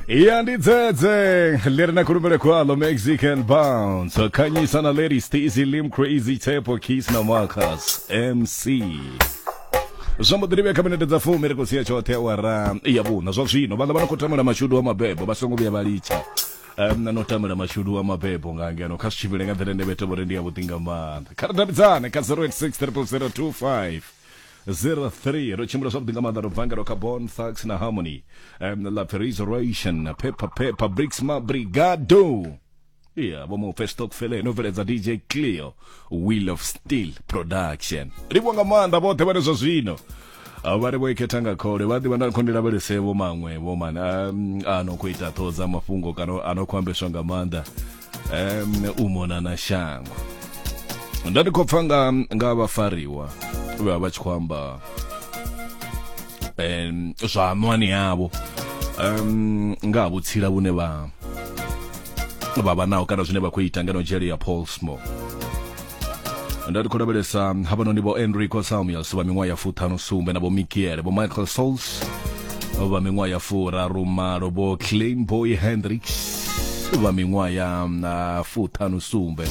ya ndi dzedze leri na khulumele khwalo mexican bounce wakhanyisa na lady stacy lim crazy tepo kiss na marcus mc zwa mbo ḓirivhe kha minete dza fumi ri khou sia tshoṱhe awara ya vhuṋa zwa zwino vhaḽa vha no khou tamela mashudu a mabebo vha songo vhuya vha litsha um, na no tamela mashudu a mabebo nga ngeno kha zwi tshivhile nga nḓila ine vhete vhori ndi yavhuḓi nga maanḓa kha ri davhidzane kha 086 00025 03 ro tshimbila zwavhuḓi nga maanḓa ro bva nga ro kha bon thax na harmony um, la resurrection pepper pepper bricks ma brigado iya vho mu festock fele no bveledza dj cleo wheel of steel production livho nga maanḓa vhoṱhe vhane zwa zwino Ah, vha ri vho ikhetha nga khole vha ḓivha nda khou ndi lavhelese vho maṅwe vho mani um, a no khou ita ṱhoho dza mafhungo kana a no khou ambeswa nga maanḓa em u mona na shango nda ndi khou pfa nga nga vhafariwa vhe vha vha tshi khou amba em zwa anwani yavho em nga ha vhutsila vhune vha vha vha naho kana zwine vha khou ita ngeno dzhele ya Paulsmore nda tikho lavhelesa havhanoni vho enrico salmios vha miṅwaha ya fuṱhanu sumbe na vho mikiele vho michael sols vha miṅwaha ya furaru malo vho clean boy hendricks vha miṅwaha ya mm, ah, fuṱhanu sumbe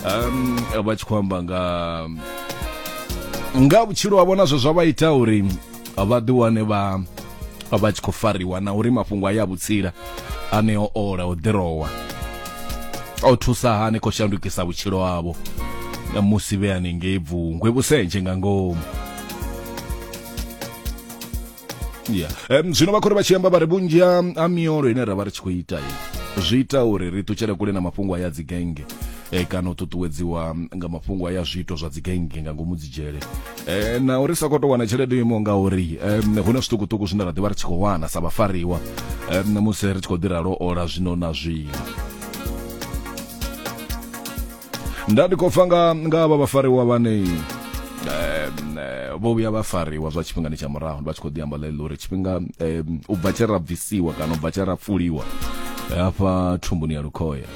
um, vha tshi khou amba nga nga vhutshilo havho nazwo zwa vha ita uri vha ḓi wane vha vha tshi khou fariwa na uri mafhungo a ya vhutsila ane o ola o ḓirowa o thusa hani khou shandukisa vhutshilo havho musi vhe haningei bvungwe vhusentshe nga ngomu yeah. um, zwino vha khou ri vha tshi amba vha ri vhunzhi ha ha miolo ine ra vha ri tshi khou ita ye zwi ita uri ri ṱutshele kule na mafhungo a ya dzigenge eh, kana u ṱuṱuwedziwa nga mafhungo a ya zwiito zwa dzigenge nga ngomu dzidzhele eh na uri sa koto wana tshelede yo imaho ngauri um, hu na zwiṱukuṱuku zwine ra ḓivha ri tshi khou wana sa vhafariwa um, musi ri tshi khou ḓira lwo ola zwino na zwino nda ndi khou pfa nga nga vha vhafariwa vhane um, eh, vho vhuya vha fariwa zwa tshifhingani tsha murahu vha tshi khou ḓi amba ḽeḽo uri tshifhinga um, u bva tshe ra bvisiwa kana u bva tshe ra pfuliwa hafha thumbuni ya lukhoya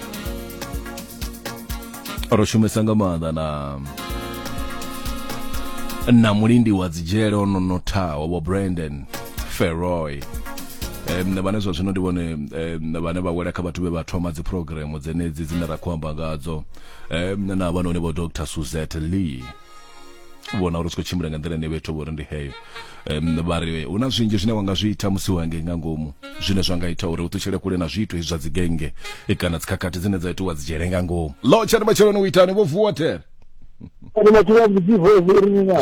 ro shumesa nga maanḓa na na mulindi wa dzidzhele o no nothaho vho brandon feroy um, vhane zwa zwino ndi vhone um, vhane vha wela kha vhathu vhe vha thoma dzi programu dzenedzi dzine ra khou amba ngadzo um, na vhanoni vho dr suzette lee vhona uri zwi khou tshimbila nga nḓila ine vhethu vho uri ndi heyo um, vha ri hu na zwinzhi zwine wa nga zwi ita musi wangei nga ngomu zwine zwa nga ita uri u ṱutshele kule na zwiito hezwi zwa dzigenge kana dzikhakhathi dzine dza itiwa dzi dzhele nga ngomu lo tshani matsheloni u itani vho vuwa tere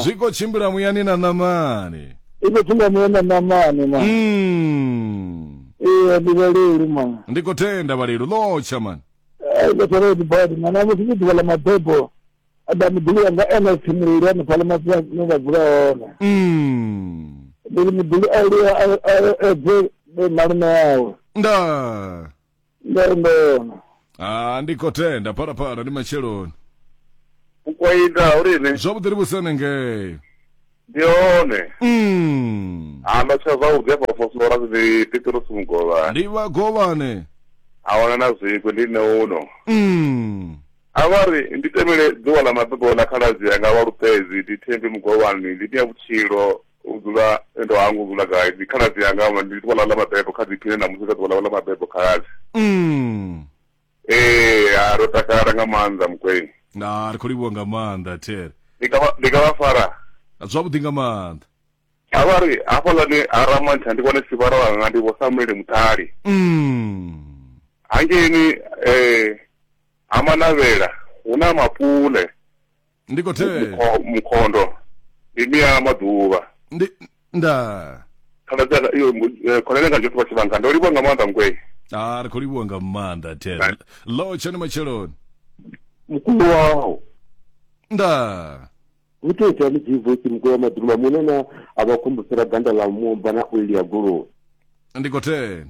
zwi khou tshimbila muyani na ṋamani i khou tshimbila muyani na ṋamani ma ee ndi vhalelu ma ndi khou tenda vhalelu lo tsha mani ai khou tenda badi mana musi ndi ḓuvha ḽa mabebo Ada muḓuli wanga ene o tshimuleli hanefhaḽa mafia no vha dzula hone mm. ndi ri muḓuli a lua edze malume yawe nda ndo ndona ah ndi khou tenda phalaphala ndi matsheloni u khou ita uri ni zwavhuḓi ri vhusene ngei ndi hone Mm. amba tsha zwavhuḓi afha fosora ndi pitrosi mugovhani ndi vhagovhane a wana na zwikwe ndi nṋe uno Mm. a vha ri ndi temele ḓuvha ḽa mabebo ḽa khaladzi yanga vha lupedzi ndi thembi mugovhani ndi nya vhutshilo u dzula ndo hangu dzula gai ndi khaladzi yanga vha ndi ḓuvha ḽa ḽa mabebo kha ḓiphine na musi kha ḓuvha ḽa ḽa mabebo khaladzi Mm. Ee, ha ro takala nga maanḓa mukweng. Na ri khou livhuwa nga maanḓa There. Ndi ka vha ndi ka vha fara. Zwavhuḓi nga maanḓa. A vha ri hafhaḽani ha Ramantsha ndi vhone sivhara wanga ndi vho Samuele Muṱhali. Mm. Hangeini eh ha Manavhela hu na mapule. ndi khou thetshelesa Mukho- mukhondo ndi mia maḓuvha ndi nda khaladza iyo khonani nga joṱhe vha tshivhanga ndo livha nga maanḓa ngwei a ri khou livhuwa nga maanḓa ten lo tshone matsheloni mukulu waho nda hu tea ita ni divoisi mukulu wa maḓuluma munana a vha khumbusela ganda ḽa mumba na oili ya goloi ndi khou ten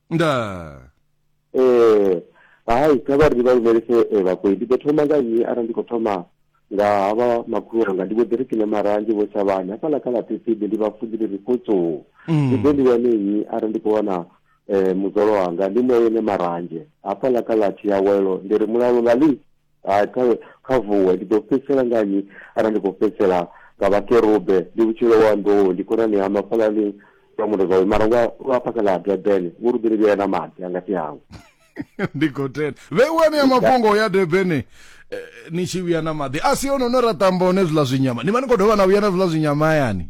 nda Eh, hai kha vha ri vha lumelise eh, vhakoi ndi ḓo thoma nga nnyi arali ndi khou thoma nga havha makhulu wanga ndi vho ḓi ri kine maranzhe vho tshavhani hafhaḽa kha ḽa pipidi ndi vha funzi ndi ri khutsuu ndi ḓe ndi wane nnyi arali ndi khou wana um muzwalo wanga ndi mu ene maranzhe hafhaḽa kha ḽa thiyawelo ndi ri mulalo nga ḽi hai kha kha vuwe ndi ḓo fhedzisela nga nnyi arali ndi khou fhedzisela nga vhakerube ndi vhutshilo wa nḓou ndi khonani ha mafhalani lwa mundo zwawe mara lwa lwa phakha ḽa durban vho lu ḓiri vhea na maḓi a ngati hawe ndi khou tenda vhe u anea mafhungo ya durban eh, ni tshi vhuya na maḓi a si ono no ra tamba hone zwiḽa zwinyama ni vha ni khou dovha na vhuya na zwiḽa zwinyama hayani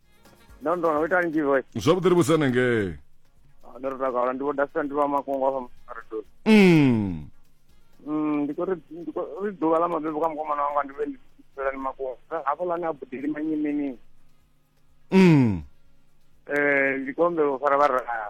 ndo ndo no ita nzhi voice zwavhuḓi ri vhusana ngei Ah, ndo ri takala ndi vho dasa ndi vha makongo afha maredo mm. Mm, ndi khou ri ndi khou ri ḓuvha ḽa mabebo kha mukomana wanga ndi vhe ndi fhelani makongo hafho lani a budeli manyi mini Mm. eh ndi khou humbela u fara vharaya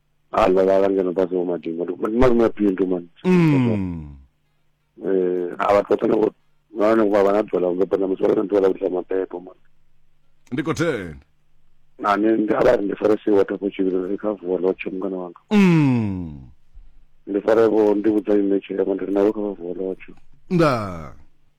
a ḽa vhala ngeno fhasi ho madingo ndi ndi malume a pindu mani Mm. eh a vhathu vhoṱhe navho nahone vha vha na ḓuvha ḽa u beba na musi vha vha na ḓuvha ḽa u ḓisa mabebo mani Ndi khou thenda. na ni ndi a vha ri ndi fare si water for children ri kha vuwa lotche mungana wanga Mm. ndi fare vho ndi vhudza ine tshirema ndi ri navho kha vha vuwa lotche Nda.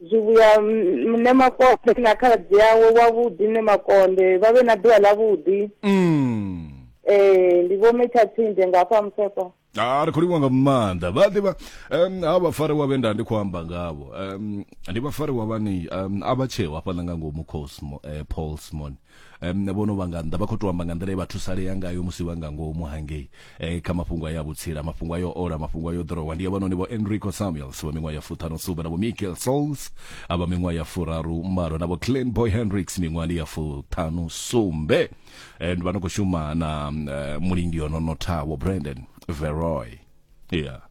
zwivhuya mune makonde na khaladzi yawe wavhuḓi ne makonde vha vhe na ḓuvha ḽavhuḓi mm. ee ndi vho metsha tsinde nga afha musepa a ri khou livha nga maanḓa vha ḓivha um ha vhafari wa vhe nda ndi khou amba ngavho um ndi vhafari wa vhani um a vha tsheo hafhaḽa nga ngomu cosmo eh, paulsmon um, vhono vha nga nnḓa vha khou tou amba nga nḓila ye vha thusalea ngayo musi vha nga ngomu hangei eh, kha mafhungo a ya vhutsila mafhungo a yo ola mafhungo a yo ḓorowa ndi avhanoni vho enrico samuels vha miṅwaha ya fuṱhanu sumbe na vho michael souls a vha miṅwaha ya furaru malo na vho clan boy hendricks miṅwahani ya fuṱhanu sumbe and vha no khou shuma na uh, mulindi ono nothawo brandon veroy yeah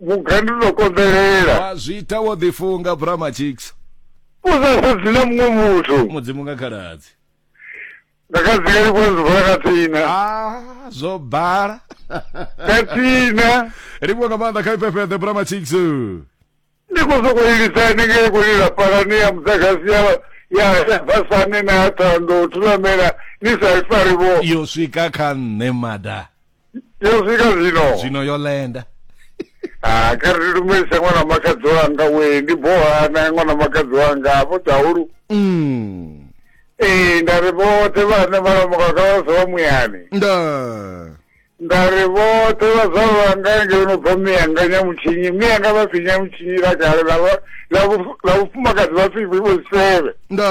vhugandu no konḓelela wa zwi ita wo ḓifunga brama chicks u sa sedzi na muṅwe muthu mudzimu nga khaladzi nga khadzika ndi vhona zwivala ka tsina ah zwo bala ka tsina ri vho nga maanḓa kha ifhefheḓe brama chicks ndi khou sokou ilisa ni nge khou lila palani ya muḓagasi ya ya ya basane na ya thando thulamela ni sa i fari vho yo swika kha nṋe mada yo swika zwino zwino yo lenda ha kha ri lumelisa ṅwana makadzi wanga we ndi boha na ṅwana makadzi wanga afho dzahulu mm. ee nda ri vhoṱhe vhane vhalamukaka vha sa vha muyani nda nda ri vhoṱhe vha sa vhanga nge no bva miyanga nyamutshinyi miyanga vha pfi nyamutshinyi la kale la vhufumakadzi vha pfi vhoseve nda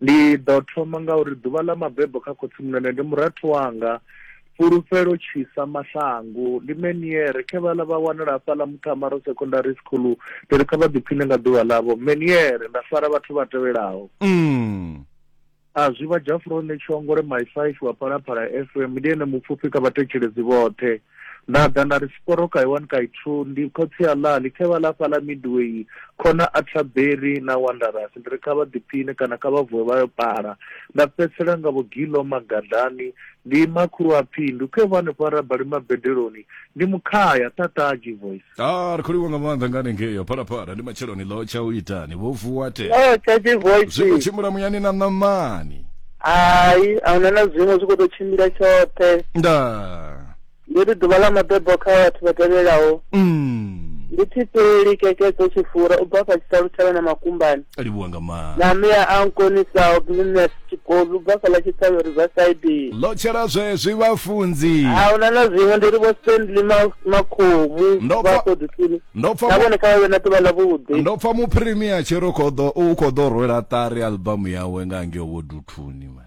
Ndi ḓo thoma nga uri ḓuvha ḽa mabebo kha khotsimunene ndi murathu wanga, fhulufhelo tshisa maṱhangu. Ndi Meniere, khe vhaḽa vha wanala hafhaḽa Muthamaro Secondary School, ndi ri kha vha ḓiphiṋe nga ḓuvha ḽavho. Meniere, nda fara vhathu vha tevhelaho. Umm. A zwi vha Jafurone Tshongole, Mai Fife wa Phalaphala FM, ndi ene mupfufhi kha vhathetshelesi vhoṱhe. Nda ḓa nda ri Sporoka Iwani Kaithu, ndi khotsi a Lali, khe vha ḽa fhaḽa Midway, khona Atterbury na Wanderers. Ndi ri kha vha ḓiphiṋe kana kha vha vuwe vha yo pala. Nda fhedzisela nga vho Gillo Magadlani, ndi makhulu a Phindu, khe vho hanefho ha Rabali Mabedeloni, ndi Mukhaya, Thataaji Voice. ah ri khou livha nga maanḓa nga hanengei ya phalaphala ndi matsheloni ḽo tsha u itani vho vuwa te o tshaji zwi khou voice tshimbila muyani na ṋamani hayi ahuna na zwiṅwe zwi khou tou tshimbila tshoṱhe nda ndi ri ḓuvha ḽa mabebo kha vhathu vha tevhelaho mm. ndi thipeli kekedzo tshifura u bva fha tshitalutshela na makumbani a livhuwa nga maanḓa na mea a nkonisaho business tshikobi ubva fhaḽa tshiṱhavhe riverside ḽo tshela zwezwi vhafunzi a huna na zwiṅwe ndi ri vho stanley Ma- makhomu Ndo pfa- vha kodisini ndo pfa na mu- vhone kha vha vhe na ḓuvha ḽa vhuḓi ndo pfa muphirimiya tshi ri u khou ḓo- u khou ḓo rwela ṱari albamu yawe nga ngeo vho duthuni man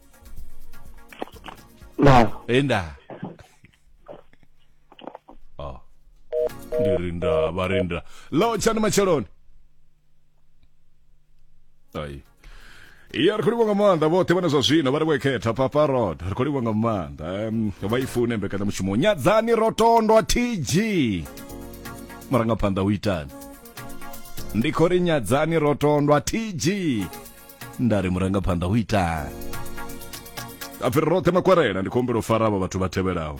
Nah. Indah. Oh. Dirinda, barinda. Lo chani macheloni. Ai. Iya ri khou livha nga maanḓa vhoṱhe vhane zwa zwino vha ri vho ikhetha papa rod ri khou livha nga maanḓa em, vha i fune mbekanyamushumo nyadzani ro tondwa tg marangaphanḓa u itani ndi khou ri nyadzani ro tondwa tg nda ri murangaphanḓa hu itani apfiri roṱhe makwarela ndi khou humbela u fara avha vhathu vha tevhelaho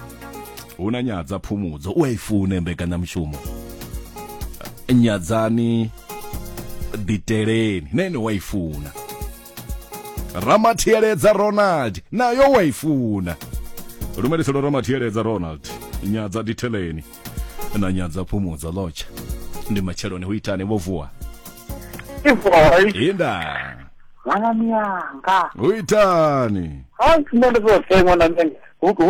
hu na nyadza phumudzo u a i fune mbekanyamushumo nyadzani ḓiteleni na ene wa i funa ramathiyeledza ronald nayo wa i funa lumeliselo ramathiyeledza ronald nyadza diteleni na nyadza phumudzo lotsha ndi matsheloni hu itani vho vuwa Ivoi, inda mwanami yanga. hu itani Hayi sine ndizothe mwana menge.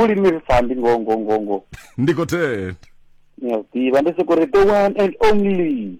Ulimirisa ndi ngo ngo ngo ngo. ndikoteni Ngiyaziva ndisikurite one and only.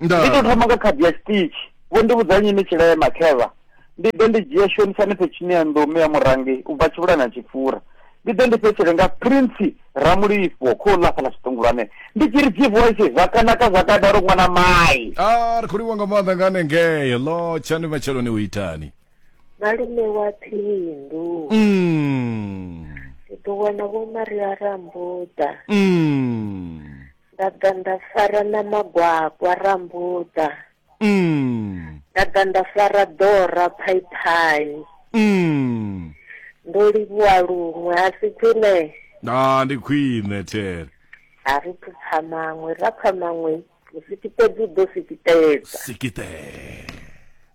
ndi to thoma nga khadi ya stitch vho ndi vhudza nyini tshilema khevha ndi ḓe ndi dzhia shonisani phethini ya nḓomu ya murangi u bva tshivhula na tshipfura ndi ḓe ndi fhetshele nga prince ramulifho kho ḽa fhala tshiṱungulwane ndi tshi ri dzivoice zwakanaka zwakadaro ṅwana mai a ah, ri khou livha nga maanḓa nga hanengei lo tshani matsheloni u itani malume wa phindu mm. ndi ḓo wana vho maria rambuda mm. nda ḓa nda fara na magwakwa rambuḓa mm. nda ḓa nda fara ḓora phaiphani mm. ndo livhuwa luṅwe a si khwine a ndi khwine there a ri phupfa maṅwe ra pfa maṅwe musikitedzi u ḓo sikitedza sikitedza